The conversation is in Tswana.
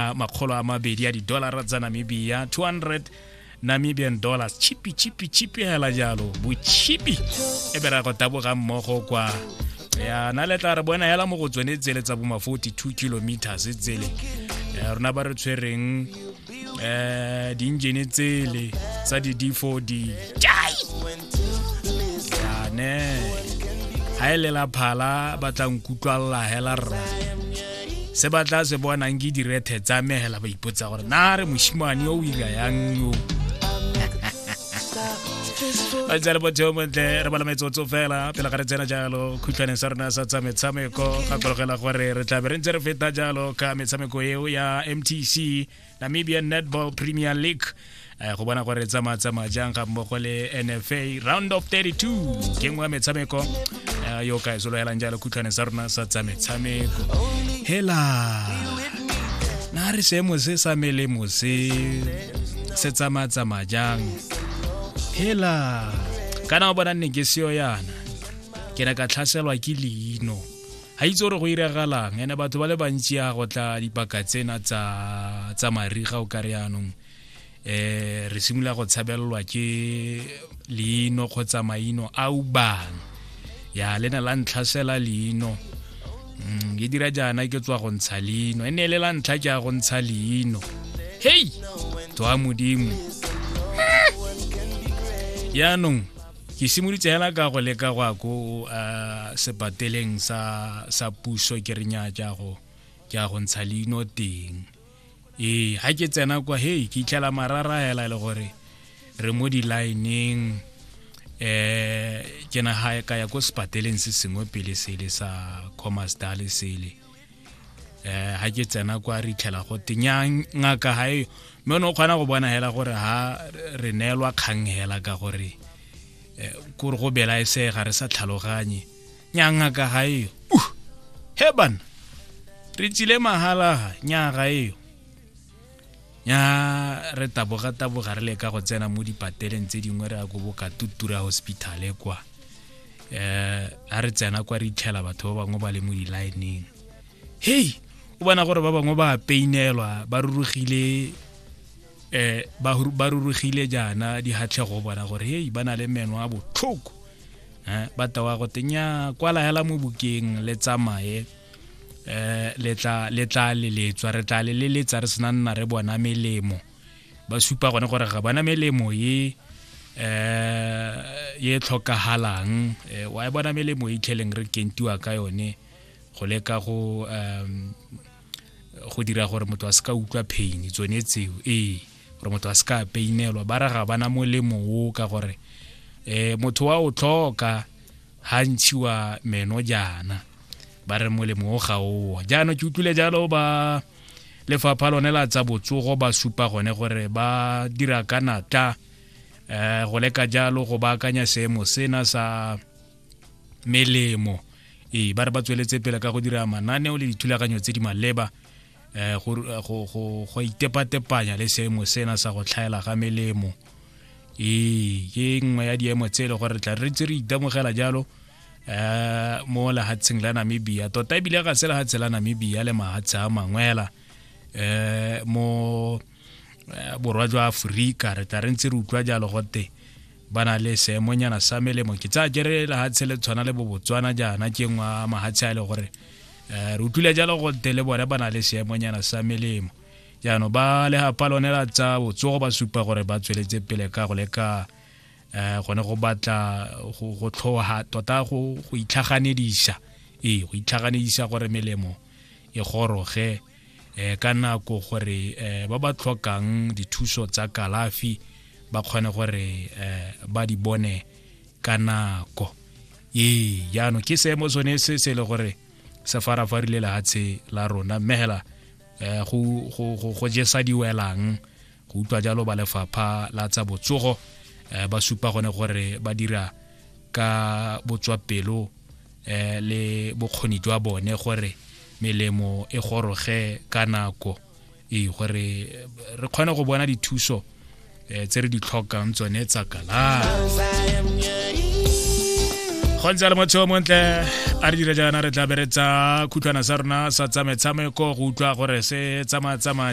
a makgolo a mabedi a didolara tsa namibia 200 namibian dollars chipi chipi chipi hela jalo bochipi e be ra go taboga mmogo kwa ya na le tla re bona hela mo go tsone tsele tsa boma 42 kilometers tsele ya rona ba re tshwereng eh di-engine tsele tsa di-d4d jai yane ga e lela phala ba tla nkutlwalela hela rra se ba tla se bonang ke direthe tsa me hela ba ipotsa gore na re moshimane o o ira yang yo ba tsale botho montle re bala metsotso fela pele ga re tsena jalo khutlhwaneng sa rona sa tsa metshameko gakologela gore re tla be re ntse re feta jalo ka metshameko eo ya mtc Namibian Netball Premier League eh, go bona gore tsamaya tsamaya jang ga mmogo le NFA round of 32 ke nngwe ya metshameko eh, yo ka e sologelang jalo khutlhwane sa rona sa tsa metshameko hela na re seemo se sa melemo se se tsamaya tsamaya jang hela kana o bona nne ke seo yana ke ne ka tlhaselwa ke leino ga itse gore go iragalang ene batho ba le bantsi ya go tla dipaka tsena tsa tsa mariga o ka re yanong eh re simolola go tshabelelwa ke leino kgotsa maino a ubang ya le ne la ntlhasela leino mm, ke dira jaana ke tswa go ntsha leino e ne le la ntlha ke ya go ntsha leino hei to a modimo yaanong ke simolotse hela ka go leka go ya ko uh, sepateleng sa sa puso ke re nya ja go ja go ntsha leino teng ee ha ke tsena kwa hey ke itlhela marara hela le gore re mo di-lineng eh ke na ha ka ya ko sepateleng se sengwe pele sele sa commerce dale sele eh ha ke tsena kwa re itlhela go tenyang ngaka ha eyo mme o ne o kgona go bona hela gore ha re neelwa kgang hela ka gore eh, kore go bela e se ga re sa tlhaloganye nya ngaka ha eyo uh he bana re tsile mahala ha nya ga eyo ya re taboga taboga re leka go tsena mo dipateleng tse dingwe re ya ko boka tutura hospital e kwa eh a re tsena kwa re itlhela batho ba bangwe ba le mo di-lineng hei o bona gore ba bangwe ba peinelwa ba rurugile eh ba rurugile jaana di hatlhego bona gore hei ba na le meno a botlhoko eh ba tawa go tenya kwala hela mo bukeng le tsamaye eh le tla le tla leletswa re tla leletsa re sena nna re bona melemo ba supa gone gore ga bona melemo ye eh ye tlhokagalang eh, wa e bona melemo e itlheleng re kentiwa ka yone go leka go um go dira gore motho a se ka utlwa pain tsone tseo ee gore motho a se ka painelwa ba re ga bana molemo o ka gore um motho wa o tlhoka ha ntshiwa meno jaana ba re molemo o ga oo jaanong ke utlwile jalo ba lefapha lone la tsa botsogo ba supa gone gore ba dira ka natla um go leka jalo go baakanya seemo sena sa melemo ee ba re ba tsweletse pele ka go dira mananeo le dithulaganyo tse di maleba eh, go go itepatepanya le seemo sena sa go tlhaela ga melemo ee ke nngwe ya diemo tse e le gore tla re tse re itemogela jalo eh mo lehatsheng la Namibia tota ebile ga se lehatshe la Namibia le mahatshe a mangwela eh mo eh, borwa jwa aforika re tla re ntse re utlwa jalo gote ba na le seemonyana sa melemo ke tsaya kere lehatshe le tshwana le bobotswana jaana ke ngwe a mahatshe a e le gore um re utlwile jalo gote le bone ba na le seemonyana sa melemo jaanong ba legapa lone la tsa botsogo ba supa gore ba tsweletse pele ka go leka um gone go batla go tlhoga tota go itlhaganedisa ee go itlhaganedisa gore melemo e goroge eh, ka nako gore eh, ba ba tlhokang dithuso tsa kalafi ba kgone gore eh, ba di bone ka nako ee jaanong ke seemo sone se se le gore se farafarile lehatshe la rona mmegela eh, go jesa diwelang go utlwa jalo ba lefapha la tsa botsogo eh, ba supa gone gore ba dira ka botswapelo eh, le bokgoni jwa bone gore melemo e goroge ka nako ee gore re kgone go bona dithuso eh, tse re di tlhokang tsone tsa kalafi go ntse le motho montle a re dira jaana re tla beretsa khutlwana sa rona sa tsa metshameko go utlwa gore se tsamaya tsamaya